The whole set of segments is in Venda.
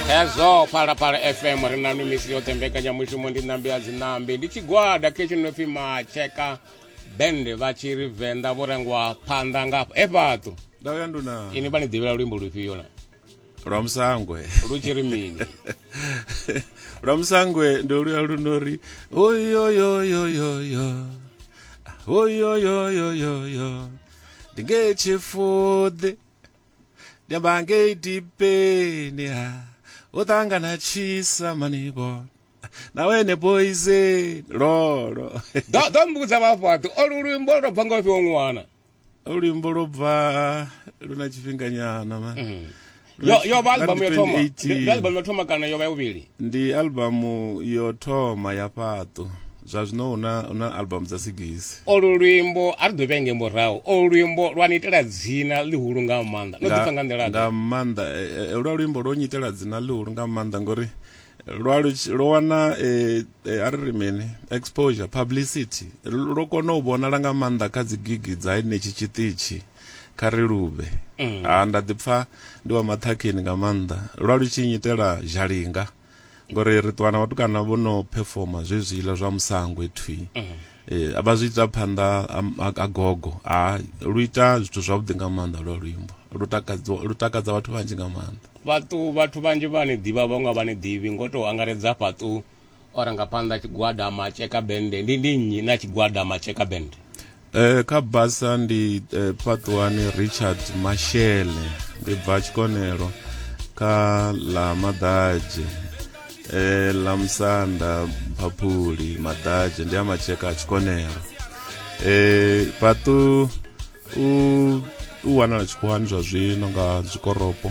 hezwo phalaphala fm ri nanu misi yoṱhe mbekanyamushumo ndi ṋambi ya dzinambi ndi tshigwada khetsho no pfi matsheka band vha tshi ri venḓa vho rengwa phanḓa nga e fhaṱu ndauya nduna ini vha ni ḓivhela luimbo lufhio na lwa musangwe lu tshi ri mini lwa musangwe ndo luya lu no ri oyoyoyoyoyo oyoyoyoyoyo ndi nge tshifuḓi ndi amba ngei dipeni ha u ṱangana tshisa manivhona na wene boise lolo ḓo ḓo mbudza vhafhaṱi olu luimbo lu tou bva nga u fhiwa ṅwana luimbo lwo bva lu na tshifhinganyana ma mm. yo yo vha albamu yo thoma ndi albamu yo thoma kana yo vha ya vhuvhili ndi albamu yo thoma ya fhaṱo zwa zwino hu na hu na album dza sigisi olu luimbo a ri ḓo vhenge murahu olu luimbo lwa ni itela dzina ḽihulu nga maanḓa no ḓipfa nga nḓila nga maanḓa eh, eh, lwa luimbo lwo nyitela dzina ḽihulu nga maanḓa ngori lwa lu- lwo wana eh, eh, a ri ri mini exposure publicity Lu- lwo kona u vhonala nga maanḓa kha dzigigi dza henetshi tshiṱitshi kha ri luvhe ha nda ḓipfa ndi wa maṱhakheni nga maanḓa lwa lu tshi nyitela zhalinga ngori ri ṱuwa na vhatukana vho no performa zwezwiḽa zwa musangwe thwi mhm. eh, a vha zwi ita phanḓa a gogo a lu ita zwithu zwavhuḓi nga maanḓa lwa luimbo lu takadza vhathu vhanzhi nga maanḓa vhathu vhathu vhanzhi vha ni ḓivha vhaṅwe vha ni ḓivhi ngo tou angaredza fhaṱu ora nga phanḓa tshigwada matsheka bende ndi ndi nnyi na tshigwada matsheka bende Eh, kha basa ndi eh, pfatuwani richard mashele ndi bva tshikonelo kha ḽa maḓadzhe eh, ḽa musanda phaphuli maḓadzhe ndi a matsheka a tshikonelo eh, fhaṱu u, u wanala tshikhuwani zwa zwino nga zwikoropo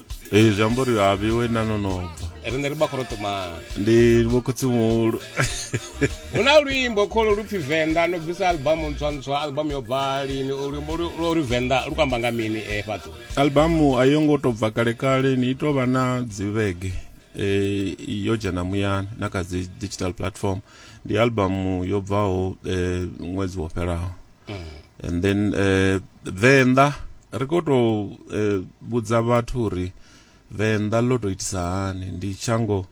ee zwi amba uri a vhiwe na no no bva riṋe ri bakorotomana ndi vhokhotsi muhulu hu na luimbo kholo lu pfi venḓa no bvisa albamu ntswa ntswa albamu yo bva lini luimbo lwo ri venḓa lu kamba nga mini e eh, fhaṱo albamu a yo ngo tou bva kale kale ni ito vha na dzivhege eh yo dzhena muyani na kha dzi digital platform ndi albamu yo bvaho eh ṅwedzi wo fhelaho mm. and then uh, venḓa ri khou tou uh, vhudza vhathu uri venḓa ḽo tou itisa hani ndi shango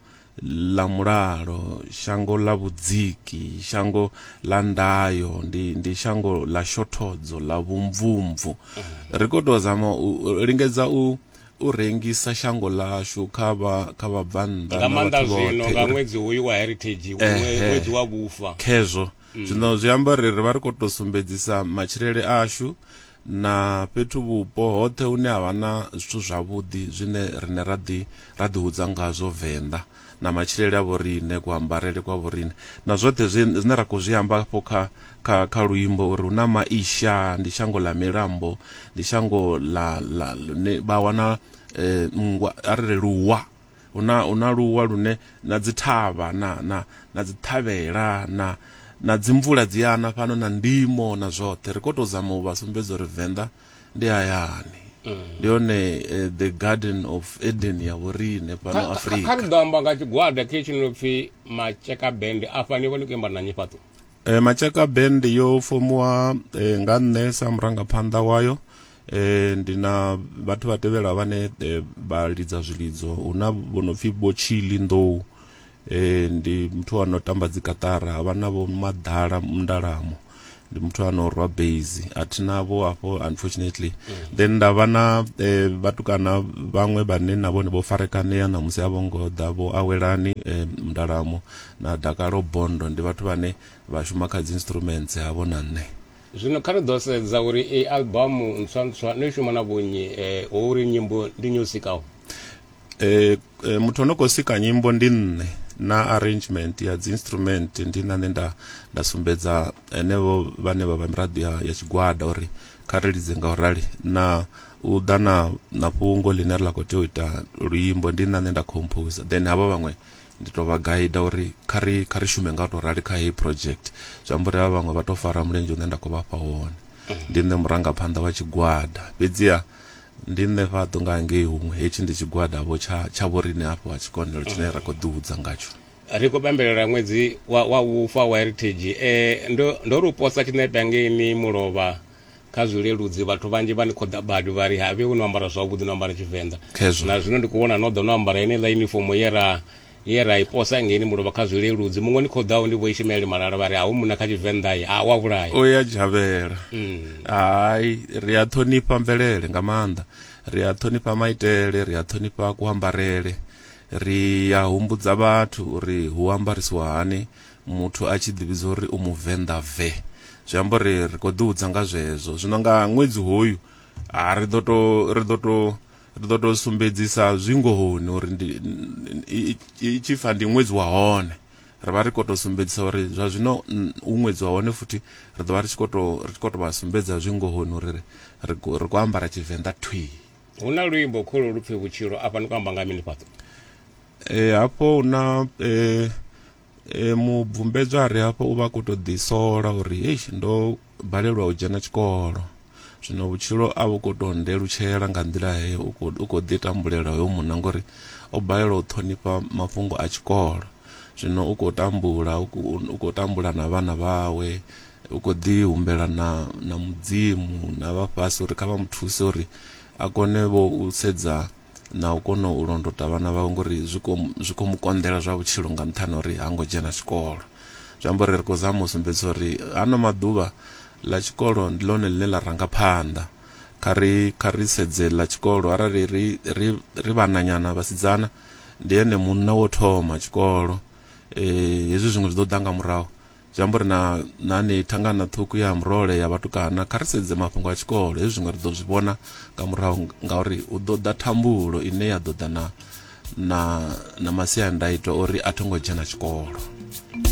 ḽa mulalo shango ḽa vhudziki shango ḽa ndayo ndi, ndi shango ḽa shothodzo ḽa vhumvumvu mm. ri khou tou zama u lingedza u u rengisa shango lashu kha vha kha vha bvannḓa nga maanḓa zwino nga ṅwedzi hoyu wa heritage ṅwedzi wa vhufa khezwo mm. zwino zwi amba ri ri vha ri khou tou sumbedzisa matshilele ashu na fhethu vhupo hoṱhe hune ha vha na zwithu zwavhuḓi zwine rine ra ḓi ra ḓihudza ngazwo venḓa na matshilele a vhorine kuambarele kwa vhorine na zwoṱhe zwine ra khou zwi amba afho kha kha kha luimbo uri hu na maisha ndi shango ḽa milambo ndi shango ḽa ḽa vha wana um nngwa a ri ri luwa Hu na, hu na luwa lune na dzithavha na, na, na dzithavhela na, na dzimvula dzi a na fhano na ndimo na zwoṱhe. Ri khou tou zama u vha sumbedza uri Venḓa ndi hayani. Ndi yone eh, the garden of Eden ya vhoriṋe fhano Kha- kha- kha ri Afrika. ḓo amba nga tshigwada khe tshi no pfi matsheka band afha ni vha ni khou imba na nyifhaṱo Eh, Matshaka band yo fomiwa eh, nga nṋe sa murangaphanḓa wayo e, ndi na vhathu vha tevhela vhane e, vha lidza zwilidzo hu na vho no pfhi vho chili nḓou e, ndi muthu ano tamba dzikatara havha na vho maḓala mndalamo ndi muthu ano rwa base a thi navho afho unfortunately then nda vha na e, vhatukana vhaṅwe vhane na vhone vho farekanea na musi a vho ngo ḓa vho awelani e, mndalamo na dakalo bondo ndi vhathu vhane vha shuma kha dzi instruments havho na nṋe Zwino kha ri ḓo sedza uri iyi albamu ntswa-ntswa no i shuma na vhunyi eh, hu uri nyimbo ndi nyo sikaho. Eh, eh, muthu ono khou sika nyimbo ndi nṋe na arrangement ya dzi instrument ndi na nṋe nda nda sumbedza henevho vhane vha vha miraḓo ya, ya tshigwada uri kha ri lidze nga u rali na u ḓa na na fhungo ḽine ri ḽa khou tea u ita luimbo ndi na nṋe nda composer then havha vhaṅwe Ndi tou vha gaida uri kha ri kha ri shume nga u tou rali kha heyi project. Zwi amba uri havha vhaṅwe vha tou fara mulenzhe hune nda khou vha fha hone. Ndi nṋe murangaphanḓa wa tshigwada, fhedziha ndi nṋe fhaḓo nga hangei huṅwe, hetshi ndi tshigwada-vho tsha tsha vhoriṋe hafha wa tshikonelo tshine ra khou ḓihudza ngatsho. Ri khou pembelela ṅwedzi wa wa vhufa wa Heritage. Ndo ndo ri u posa tshiṋepe hangeini Mulovha kha zwileludzi vhathu vhanzhi vha ni khou ḓa badi vha ri havhe hu no ambara zwavhuḓi no ambara tshivenḓa na zwino ndi khou vhona no ḓa no ambara ine ḽa yunifomo ye ra ye ra i posa ngeni mulovha kha zwileludzi muṅwe ni khou ḓaho ndi vho ishimaeli malala vha ri a hu muna kha tshivenḓa ye a wa vhulaya o ya dzhavhela mm. hai ri a ṱhonifha mvelele nga maanḓa ri a ṱhonifha maitele ri a ṱhonifha kuambarele ri a humbudza vhathu uri hu ambarisiwa hani muthu a tshi ḓivhidza uri u muvenḓa ve zwi amba uri ri khou ḓihudza nga zwezwo zwino nga ṅwedzi hoyu a ri ḓo to ri ḓo to ri ḓo to sumbedzisa zwingohoni uri ndi i tshi fa ndi ṅwedzi wa hone ri vha ri khou to sumbedzisa uri zwa zwino u ṅwedzi wa hone futhi ri ḓo vha ri tshi khou to ri tshi khou to vha sumbedza zwingohoni uri ri ri khou ambara tshivenḓa thwii hu na luimbo kholo lupfe vhutshilo afha ni khou amba nga mini fhaṱo e hafho hu na um e, mubvumbedzwa a re hafha u vha khou tou ḓisola uri eish ndo balelwa u dzhena tshikolo zwino vhutshilo a vhu khou tou ndelutshela nga nḓila heyo u khou- u khou ḓi tambulela hoyo munna ngori o balelwa u ṱhonifha mafhungo a tshikolo zwino u khou tambula u khou- u khou tambula na vhana vhawe u khou ḓi humbela na na mudzimu na vha fhasi uri kha vha mu thuse uri a kone vho u sedza na u kona u londota vhana vhawe ngori zwi khou zwi khou mu konḓela zwa vhutshilo nga nṱhani ha uri ha ngo dzhena tshikolo zwi amba uri ri khou zama u sumbedzisa uri hano maḓuvha ḽa tshikolo ndi ḽone ḽine ḽa ranga phanḓa kha ri kha ri sedze ḽa tshikolo arali ri ri ri vhananyana vhasidzana ndi ene munna wo thoma tshikolo eh hezwi zwiṅwe zwi ḓo ḓa nga murahu Zwi amba uri na na ni thangana ṱhukhu ya murole ya vhatukana kha ri sedze mafhungo a tshikolo hezwi zwiṅwe ri ḓo zwi vhona nga murahu ngauri hu ḓo ḓa thambulo ine ya ḓo ḓa na na na masiandaitwa uri a tho ngo dzhena tshikolo